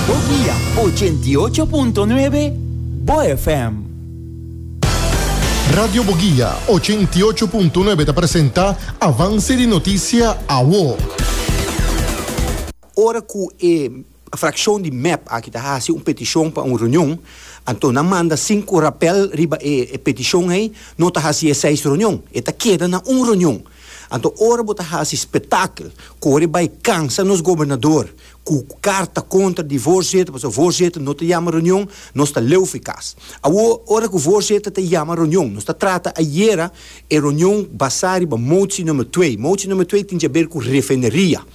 Bo dia ochenta i ocho punto nuebe Bo FM. Radio Boguia ochenta i ocho punto nuebe ta presenta Avance di Noticia Awo. Ora cu e fraccion di mep aki ta haci un peticion pa un reunion, anto nan manda cinco rapel riba e peticion ey, no ta haci e seis reunion, e ta keda na un reunion. Anto ora bo ta hasi spetakel, kore bai kansa nos gobernador ku karta kontra di voorzitter pasobra voorzitter no ta yama reunion, nos ta leu fikas. Awo ora ku voorzitter ta yama reunion, nos ta trata ayera e reunion basa riba motsi number twee. Motsi number twee tin ke haber ku refineria.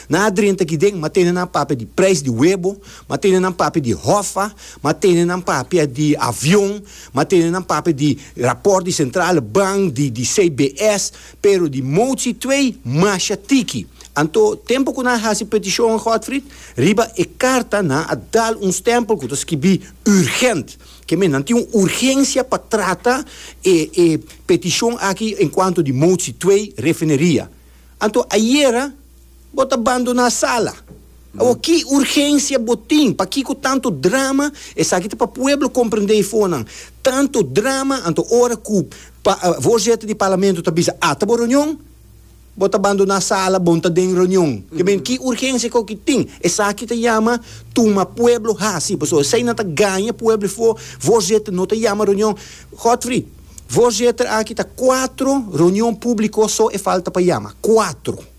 Nan a drenta kiden, ma tene nan papia di prijs di webo, ma tene nan papia di hofa, ma tene nan papia di avion, ma tene nan papia di raport di sentrale bank, di di CBS, pero di mouci twee masha tiki. Anto, tempo cu nan a haci peticion, Godfried, riba e carta nan a dal un stempel cu ta skibi urgent. Ke men, nan tin un urgencia pa trata e e peticion aki en cuanto di mouci twee refineria. Anto ayera bo ta bandoná sala. Awor ki urgensia bo tin? Pakiko tanto drama? Esaki ta pa pueblo komprendé i fonan. Tanto drama, anto ora ku voorzitter di parlamento ta bisa ata bo reunion, bo ta bandoná sala, bon ta den reunion. Te bini ki urgensia ku ki tin? Esaki ta yama tuma pueblo hasi. Pasobra esei nan ta gaña pueblo i voorzitter no ta yama reunion. Godfrey. Voorzitter, aki ta cuatro reunion publico so e falta pa yama. Cuatro.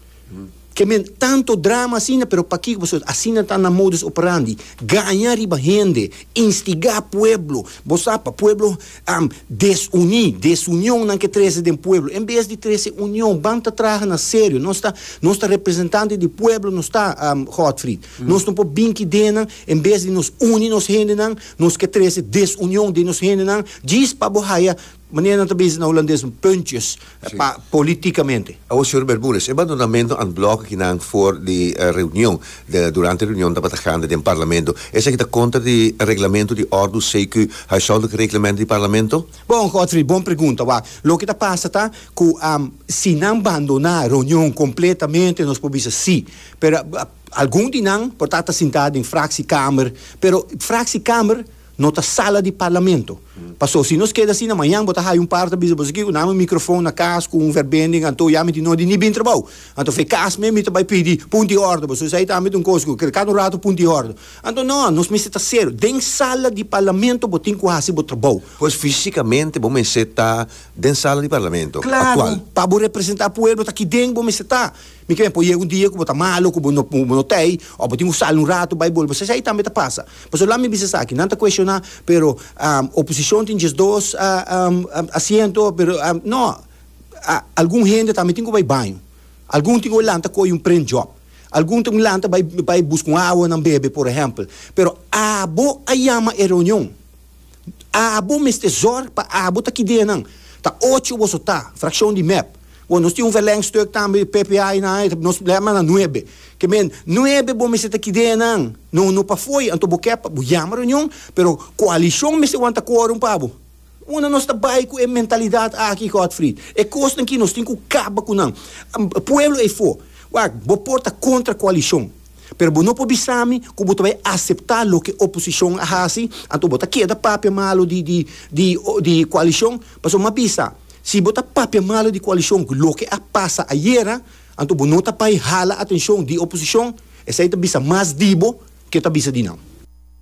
Ke men tanto drama asina, pero pakiko pasobra asina ta nan modus operandi. Gaña riba hende, instigá pueblo. Bo sa pa pueblo desuní, desunionnan ke trese den pueblo. En bes di trese union, ban ta traha na serio. Nos ta, nos ta representante di pueblo nos ta, Godfried. Nos no por bin ki deennan en bes di nos uni nos hendenan. Nos ke trese desunion den nos hendenan djis pa bo haya, manera nan ta bezi na Hulandes, puntjes pa politikamente. Awor, señor Bermudez, e bandonamento and block aki nan for di reunion, durante reunion tabata gande den Parlamento, esaki ta kontra di reglamento di ordu CQ, Huishoudelijke Reglement di Parlamento? Bon, Godfrey, bon pregunta. Wak, loke ta pasa ta ku si nan bandona reunion kompletamente nos por bisa sí, pero, Algun di nan por ta ta sintá den fraksiekamer, pero fraksiekamer no ta sala di parlamento. Paso, si nos keda asina, mañan bo ta haya un par ta bisa boso, Kiko, nami un mikrofon na kas ku un verbending, anto ya mi tin nodi ni bin trabou. Anto fe kas men mi ta bai pidi punti òrdu boso. Esei ta tambe ta un kos ku kada un ratu punti òrdu. Anto no, nos mester ta serio. Den sala di parlamento bo tin ku hasi bo trabou. Pues físikamente bo mester ta den sala di parlamento aktual? Klaru! Pa bo representá pueblo ta aki den bo mester ta. Mi ke por yega un dia ku bo ta malu ku bo no bo no ta ei òf bo tin ku sali un ratu bai bolbe esei tambe ta pasa pasobra laat mi bisa esaki nan ta kueshoná pero oposishon tin diesdos asiento pero nò algun hende tambe tin ku bai baño algun tin ku bai lanta koyo un prent jòb algun tin ku lanta bai buska un awa nan bebe por ehèmpel pero abo a yama e reunion. Abo mester zorg pa abo ta ki den nan. Ta ocho boso ta, frakshon di mep. Bo nos tin un verlengstuk tambe di ppa i nan e nos blema na nuebe. Ke men nuebe bo mester ta ki den nan. No no pafoi anto bo ke bo yama reunion pero koalishon mester wanta kworum pa bo. Una nos ta bai ku e mentalidat aki Godfrid. E kosnan ki nos tin ku kaba ku nan. Pueblo ei for. Wak bo por ta kontra koalishon. Pero bo no por bisa mi ku bo ta bai aseptá loke oposishon a hasi, anto bo ta keda papia malu di di di di koalishon. Pasobra mi a bisa, si bo ta papia malu di koalishon ku loke a pasa ayera, anto bo no ta bai hala atenshon di oposishon. Esei ta bisa mas di bo ke ta bisa di nan.